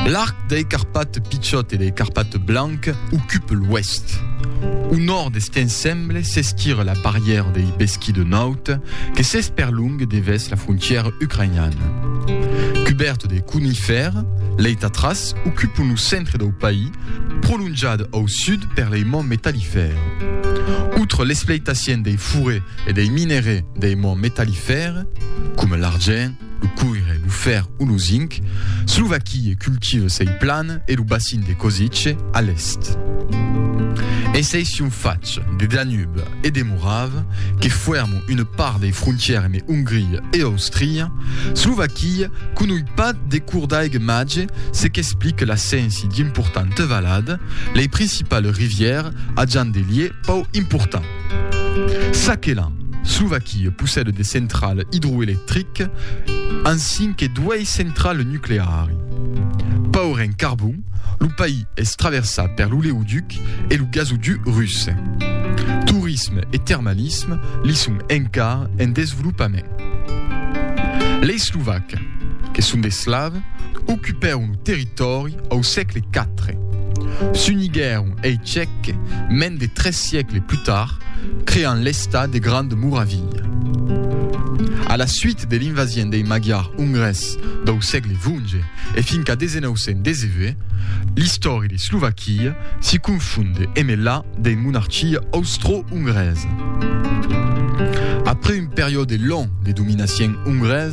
L'arc dei Carpates pichòt e dei Carpates blanc ocupe l'oèst. Au nòrd d'Estienne semble s'esquir la barrièra dei Besqui de Naut que s'esperlongue devèth la frontièra ucrainiana. Cubèrt de conifèrs, lei Tatras ocupon lo centre dau país, prolonjat au sud per lei monts metallifèrs. Autre l'expleitacien dei forêts e dei minerais dei monts metallifèrs, coma l'argent, lo coire, lo fèr o lo zinc, Slovaquie cultive sei plan e lo bacin de Košice a l'èst. E sei sion fach de Danube e de Morave que fuèrmo una part dei frontière me Ongria e Austria, Slovaquie conoi pas de cour d'aigue mage se qu'explique l'assenci d'importante valad, lei principales rivières ajan de lieu pau important. Sakela, Slovaquie, possède de centrale idroelectrique ansin que duei centrale nucleari. Paur en carbon, lo país es traversat per l'oleoduc e lo gasoduc russe. Torisme e termalisme li son encara en desvolopament. Lei Slovacs, que son de Slaves, ocupèron lo territòri Au sègle quatre, s'uniguèron ei Tchèc mens de tres siècles plus tard, creant l'Estat de Grande Moravilha. A la suite de l'invasien dei Magyars Ungres dau sègle xvi e fins qu'a 1919, l'istòria de Slovaquia si confonde emé la dei monarchia austro-ungresa. Après un periòde long de dominacion ungresa,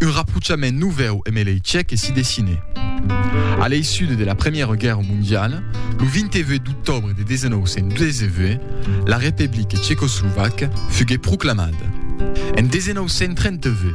Un raprochament novèu emb lei Tchèques si dessine. A l'eissud de la Première Guèrra Mondiala, lo 28 d'octòbre de 1918, la Republique Tchecoslovaque fugué proclamada. En 1938,